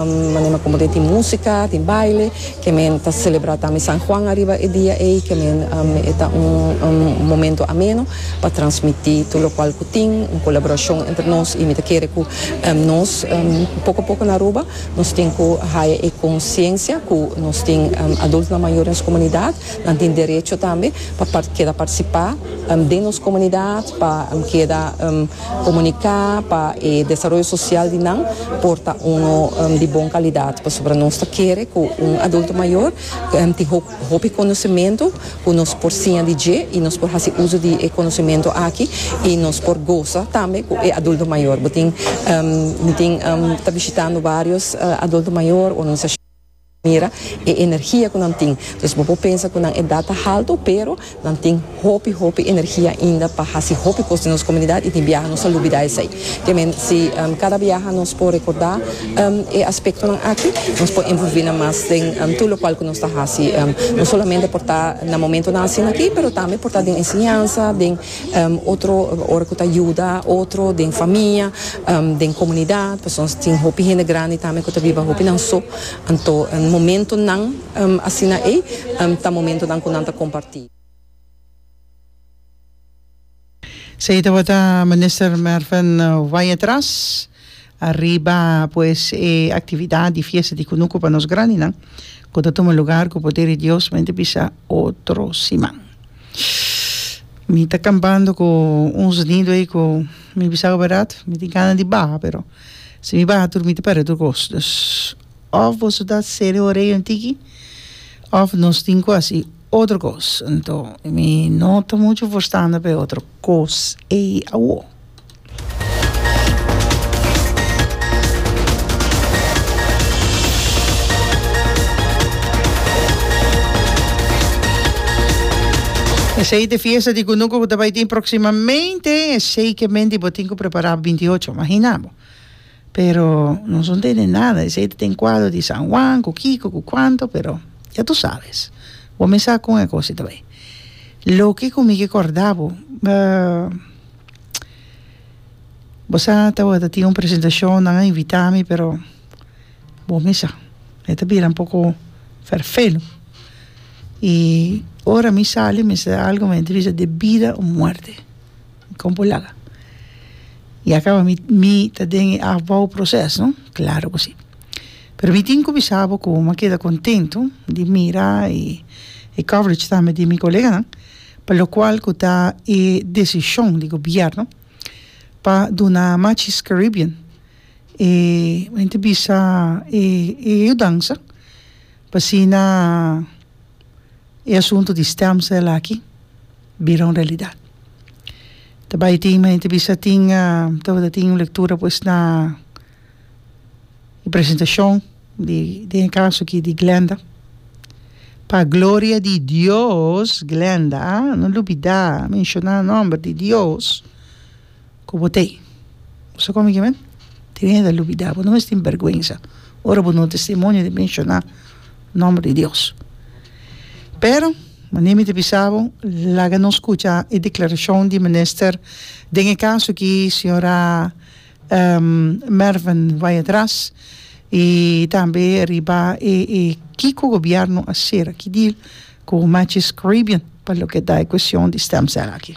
Manera como tin musica, tin baile, que men ta celebra tambe San Juan ariba e dia ey, que men e ta un momento ameno pa transmiti tur locual cu tin, un colaboracion entre nos y mi ta kere cu nos poco poco na Aruba nos tin cu haya e conciencia cu nos tin adultonan mayor den nos comunidad, nan tin derecho tambe pa keda participa den nos comunidad, pa keda. Komuniká pa e desaroyo sosial di nan por ta uno di bon kalidat pasobra nos ta kere ku un adulto mayor tin hopi konosementu ku nos por siña di dje i nos por hasi uso di e konosementu aki i nos por gosa tambe ku e adulto mayor. Bo tin tin ta bishitando varios adulto mayor o. mira e energia ku nan tin. Dus bo por pensa ku nan edat ta haltu, pero nan tin hopi hopi energia ainda pa hasi hopi kos den nos komunidat i tin biaha nos ta lubidá esei. Ke men si kada biaha nos por rekordá e aspektonan aki, nos por envolví nan mas den tur lokual ku nos ta hasi. No solamente por ta na momentunan asina aki, pero tambe por ta den enseñansa, den. otro ora cu ta yuda otro den famia den comunidad pasobra nos tin hopi hende grandi tambe cu ta biba hopi nan so anto momentonan asina ey ta momentonan cu nan ta comparti. Esey tabata Minister Mervin Wyatt Ras Ariba pues e actividad di fiesta di cunuco pa nos grandinan cu ta tuma lugar cu poder di Dios men ta bisa otro siman. Mi ta campando cu un sonido ey cu mi bisaba berdad mi tin gana di baha pero si mi baha tur mi ta perde tur cos dus of boso ta cere orey un tiki of nos tin cu haci Otro cos, anto mi no ta mucho forstando p'e otro cos ey awo. Esey t'e fiesta di cunuco cu ta bay tin proximamente, esey k'e menti bo tin cu prepara binti ocho, imagina bo. Pero nos no tende nada esey ta den cuadro di San Juan cu kico cu cuanto pero ya tu sabes bo me sa con e cos ita bay loke cu mi ke corda bo bo sa tawata tin un presentacion nan a invita mi pero bo me sa e ta bira un poco vervelo y ora mi sali mester algo mi a bisa de bida o muerte. Kon por laga? Ya kaba mi mi ta den e afbouw proces no klaro ku si pero mi tin ku bisa bo ku bo a keda kontentu di mira e e coverage tambe di mi koleganan pa lokual ku ta e desishon di gobièrnu pa duna Matchis Caribbean e men ti bisa e e yudansa. Asina e asuntu di stemcel aki bira un realidad. Ta bay tin mi ta bisa tin tabata tin un lectura pues na e presentacion di den e caso aki di Glenda. Pa gloria di Dios Glenda, no lubida menciona nomber di Dios. ku bo tei. Bo sa kome ke men? Deja di lubidá. Bo no mes tin bèrgwensa ora bo no testimonio di menshoná nòmber di Dios. Pero, manera mi ta bisa bo, laga nos kucha e deklarashon di minister den e kaso aki, señora Merven Weyer-Tras, i tambe riba e e kiko gobièrnu a sera, ki deal ku Matches Caribbean pa loke ta e kueshon di stem cel aki.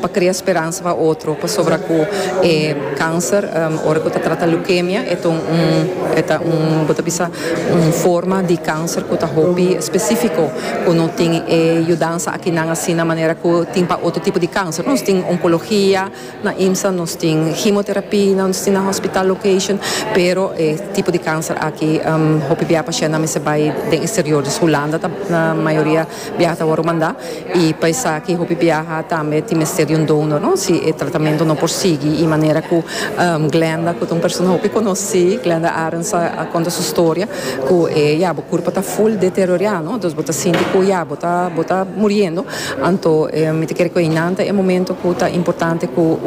pa crea speransa pa otro pasobra cu e cancer ora cu ta trata leukemia e ta un e ta un bo ta bisa un forma di cancer cu ta hopi specifico cu no tin e yudansa akinan asina manera cu tin pa otro tipo di cancer nos tin oncologia na IMSA nos tin hemotherapie na nos tin na hospital location pero e tipo di cancer aki hopi bia pashentnan mester bay den exterior dus Hulanda ta mayoria biaha ta wòrdu mandá i pa esaki hopi biaha tambe tin mester di un donor no si e tratamentu no por sigui i manera ku Glenda ku ta un persona hopi konosí Glenda Arens a konta su storia ku e ya bo kurpa ta full deteriorá no entonces bo ta sinti ku ya bo ta bo ta muriendo anto mi ta kere ku einan ta e momento ku ta importante ku un